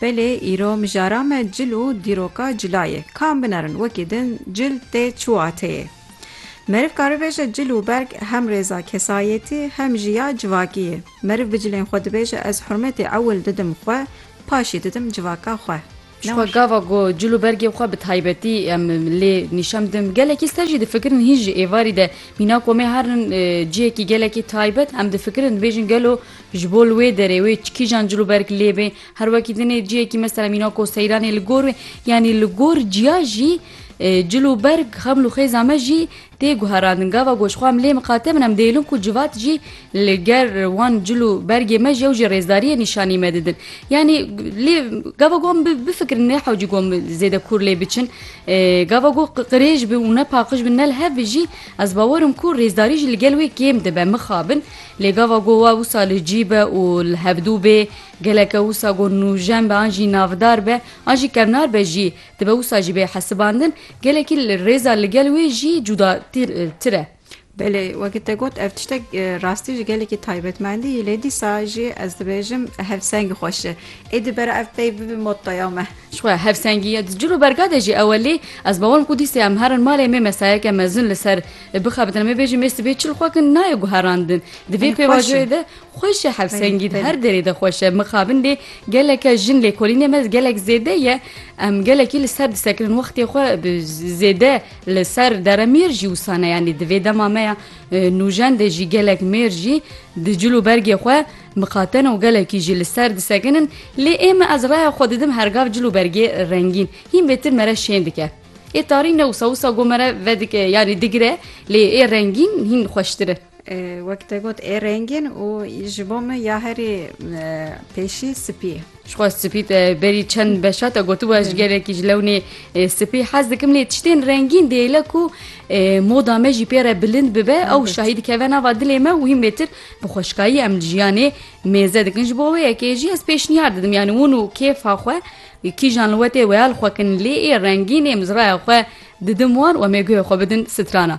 Belê îro mijara me cil û dîroka cila ye. Kam binerin wekî din cil tê çiwateyê. Meriv karibêje cil û berg hem rêza kesayetî hem jî ya civakî ye. Meriv bi cilên xwe dibêje ez hurmetê ewil didim xwe, paşî didim civaka xwe. Ji xwe gava ku cil û bergên xwe bi taybetî em lê nîşan bidin, gelekî siter jî difikirin hîn ji êvarî de mîna komê herin cihekî gelekî taybet em difikirin dibêjin gelo ji bo li wê derê wê kîjan cil û berg lê bê her wekî din ê cihekî mesela mîna ko seyranê li gor wê yanî li gor ciya jî cil û berg xeml û xêza me jî Tê guherandin gava goşxwa em lê miqate bin em dihêlin ku civat jî li ger wan cil û bergê me jî ew jî rêzdariyê nîşanî me didin. Yanî lê gava goh em bifikirin ne hewcî goh em zêde kûr lê biçin. Gava goh qirêj bi û ne paqij bi ne li hev bi jî ez bawer im ku rêzdarî jî li gel wê kêm dibe mixabin. Lê gava goh wa wisa li cî be û li hevdû bê geleke wisa goh nûjen be an jî navdar be an jî kevnar be jî Dibe wisa jî bê hesibandin, gelekî li rêza li gel wê jî cuda tir e. Belê, wekî te got ev tiştek rastî jî gelekî taybetmendî yî lê dîsa jî ez dibêjim hevsengî xweş e. Êdî bera ev pey bibe mottoya me. Jixwe hevsengî ya di cil û berga de jî ew e lê ez bawer im ku dîsê em herin malê me mesayeke mezin li ser bixebitin em ê bêjin mêr sibê çil xwe kin nayê guherandin. Di vê pêvajoyê de Xweş e Hevsengî di her derê de xweş e. Mixabin lê geleke jin lêkolînê me gelek zêde ye. Em gelekî li ser disekirin wextê xwe bi zêde li ser dere mêr jî wisa ne yanî di vê dema me ya nûjen de jî gelek mêr jî di cil û bergê xwe mixatene û gelekî jî li ser disekinin lê ê me ez raya xwe didim hergav cil û bergê rengîn hîn bêtir mere şên dike. Ê tarî ne wisa wisa got mere vedike yanî digire lê ê rengîn hîn xweştir e. Wek te got ê rengîn û ji bo min ya herî pêşî sipî ye. Jixwe sipî te berî çend beşa te gotibu ez ji gelekî ji lewnê sipî hez dikim lê tiştên rengîn dêle ku moda me jî pê re bilind bibe ew şahî dikeve nava dilê me û hîm lêtir bi xweşkayî em li jiyanê mêze dikin ji bo wê yekê jî ez pêşniyar didim yanî hûn û kêfa xwe kîjan li wetê weya li xwe kin lê ê rengîn ê mizraya xwe didim wan û em ê guhê xwe bidin sitrana.